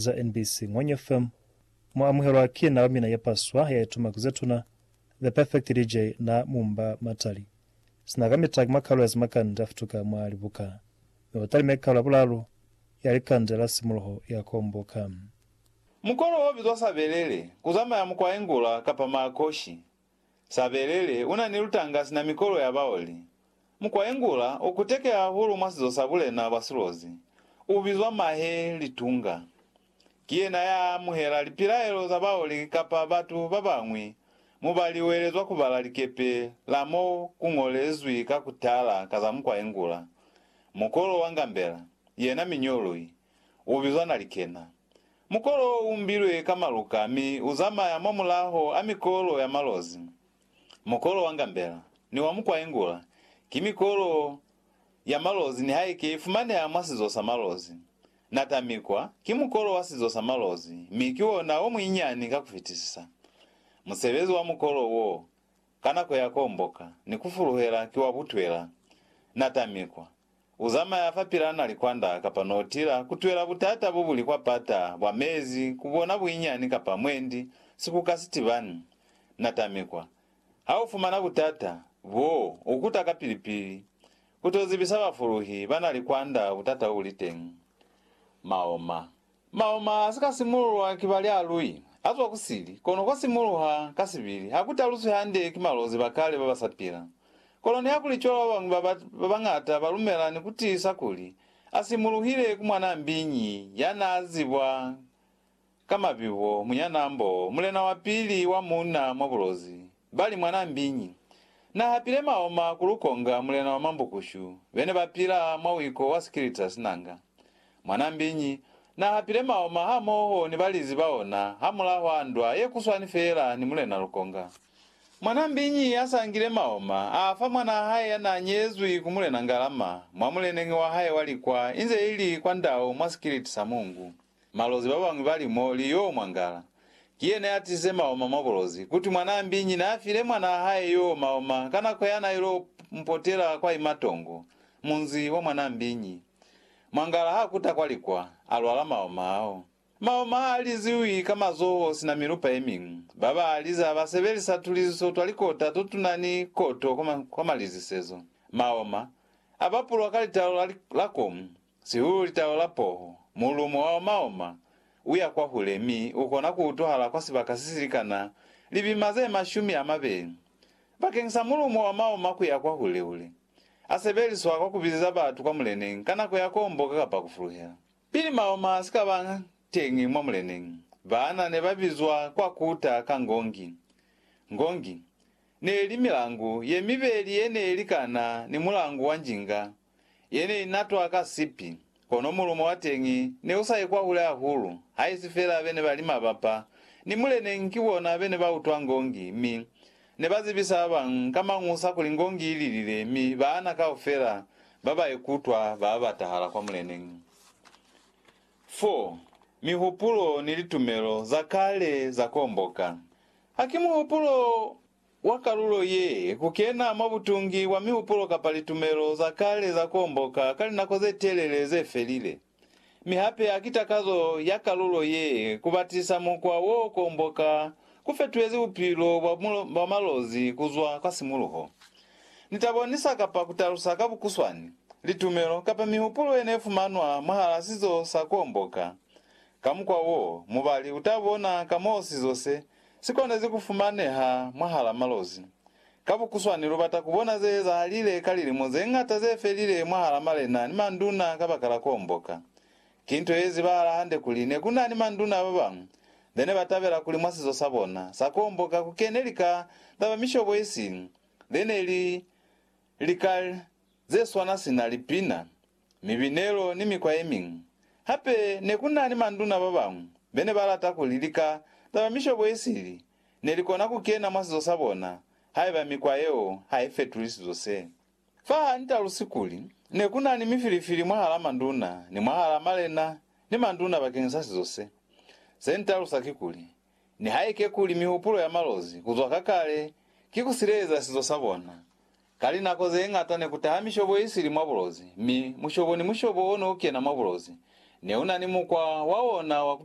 za NBC Ngwenya FM, mu amuhelwa ki na wa mina ye paswa ya ituma ku zetuna, The Perfect DJ na Mumba Matali. Sina kamita ki mwa kalu ya zimakande a futuka mwa libuka, mi u talime kalu ya bulalu ya likande la simuloho ya komboka. Mukolo o bizwa sabelele, ku zamaya mukwa engula kapa maakoshi. Sabelele una ni lutanga sina mikolo ya baoli. Mukwaengula u kuteke hahulu mwa sizo sa bulena bwa silozi, u bizwa mahe litunga. Ki yena ya amuhela lipilaelo za baoli kapa batu ba bañwi mo ba liwelezwa ku bala likepe la mo ku ñolezwi ka ku tala ka za mukwaengula. Mukolo wa ngambela, yena miñolwi, U bizwa Nalikena. Mukolo wo u mbilwe ka maluka mi u zamaya mwa mulaho a mikolo ya malozi. Mukolo wa ngambela ni wa mukwaingula ki mikolo ya malozi nihaike i fumaneha mwa sizo sa malozi. Natamikwa ki mukolo wa sizo sa malozi mi ki ona o muinyani ka ku fitisisa. Musebezi wa mukolo wo ka nako ya komboka ni ku fuluhela ki wa butwela. Natamikwa. U zamaya fapil'a na likwanda kapa notila, ku twela butata bo buli kwa pata bwa mezi, ku bona buinyani kapa mwendi, si ku ka si tibani. Na tamikwa. Ha u fumana butata boo, u kuta kapili-pili. U t'o zibisa bafuluhi ba na likwanda butata bo bu li teñi. Maoma. Mauma a si ka simululwa ki balyalui, a zwa ku sili, kono kwa simuluha ka sibili, ha ku taluswi hande ki malozi ba kale ba ba sa pila. Kono nihakuli cwalo ba bañwi ba bañata ba lumela ni ku tiisa kuli a simuluhile ku mwanaa mbiñi ya naa zibwa ka mabibo, munyanambo, mulena wa pili wa muuna mwa bulozi, Bali, Mwanaa mbiñi na hapile maoma ku lukonga mulena wa mambukushu bene ba pila mwa wiko wa sikilita sinanga. Mwanaa mbiñi na hapile maoma hamoho ni balizi ba ona hamulaho a ndwa ye kuswani feela ni mulena lukonga. Mwanaa mbiñi a sangile maoma a fa mwanaa hae ya naa nyezwi ku mulena ngalama mwa muleneñi wa hae wa likwa inze ili kwa ndau mwa sikiliti sa mungu. Malozi babañwi bali mo li yoo mwangala. Ki yena ya tize maoma mwa bulozi. Kuti mwanaa mbinyi naa file mwanaa hae yoo maoma ka nako yana iloo mpotela kwa imatongo, munzi wa mwanaa mbinyi. Mwangala ha kuta kwa likwa, a lwala maoma ao. Maoma aa liziwi ka mazoho sina milupa yemiñwi. Baba aliza ba sebelisa tuliziso twa likota to tuna ni koto kwa malizisezo. Maoma, a bapulwa ka litalo la komu, Sihulu litalo la poho, mulumo wa omaoma u ya kwahule mi u kona ku utwahala kwa sibaka se si likana libima ze mashumi a mabeli. Bakeng sa mulumo wa maoma ku ya kwahule-hule, a sebeliswa kwa ku bizeza batu kwa muleneñi ka nako ya komboka kapa ku fuluhela. Pili maoma a si ka ba teñi mwa muleneñi, baana ne ba bizwa kwa kuta ka ngongi. Ngongi ne li milangu ye mibeli ye ne likana ni mulangu wa njinga Ye ne i natwa ka sipi, kono mulumo wa teñi ne u sa ye kwahule hahulu, haisi fela be ne ba li mabapa ni muleneñi ki bona be ne ba utwa ngongi mi ne ba zibisa ba bañwi ka mañusa kuli ngongi i lilile mi baana kaufela ba ba ye kutwa ba abatahala kwa muleneñi. 4, Mihupulo ni litumelo za kale za komboka. Ha ki muhupulo! wa kalulo ye, ku kena mwa butungi bwa mihupulo kapa litumelo za kale za komboka ka linako ze telele ze felile. Mi hape ha ki takazo ya kalulo ye ku batisa mukwa wo komboka ku fetuhezi bupilo bwa bwa malozi ku zwa kwa simuluho. Ni ta bonisa kapa ku talusa ka bukuswani, litumelo kapa mihupulo ye ne fumanwa mwahala sizo sa komboka. Ka mukwa wo, mubali u ta bona ka moo sizo se Si konezi ku fumaneha mwahala malozi. Ka bukuswani lu bata ku bona ze ezahalile ka lilimo ze ñata ze felile mwahala malena ni manduna kabakala ku omboka. Ki nto ye zibahala hande kuli ne ku na ni manduna ba bañwi be ne ba tabela kuli mwa sizo sa bona sa ku omboka ku kene lika za ba mishobo isi ze ne li lika ze swana sina lipina. mibinelo ni mikwa ye miñwi. Hape ne ku na ni manduna ba bañwi be ne ba lata kuli lika za ba mishobo ye sili ne li kona ku kena mwa sizo sa bona haiba mikwa yeo ha i fetuli sizo se. Fa ha ni talusi kuli ne ku na ni mifilifili mwahal'a manduna ni mwahal'a malena ni manduna bakeñisa sizo se, se ni talusa kikuli, Nihaike kuli mihupulo ya malozi ku zwa ka kale ki ku sileleza sizo sa bona, ka linako ze ñata ne ku taha mishobo ye sili mwa bulozi, mi mushobo ni mushobo o ne u kena mwa bulozi ne u na ni mukwa wa ona wa ku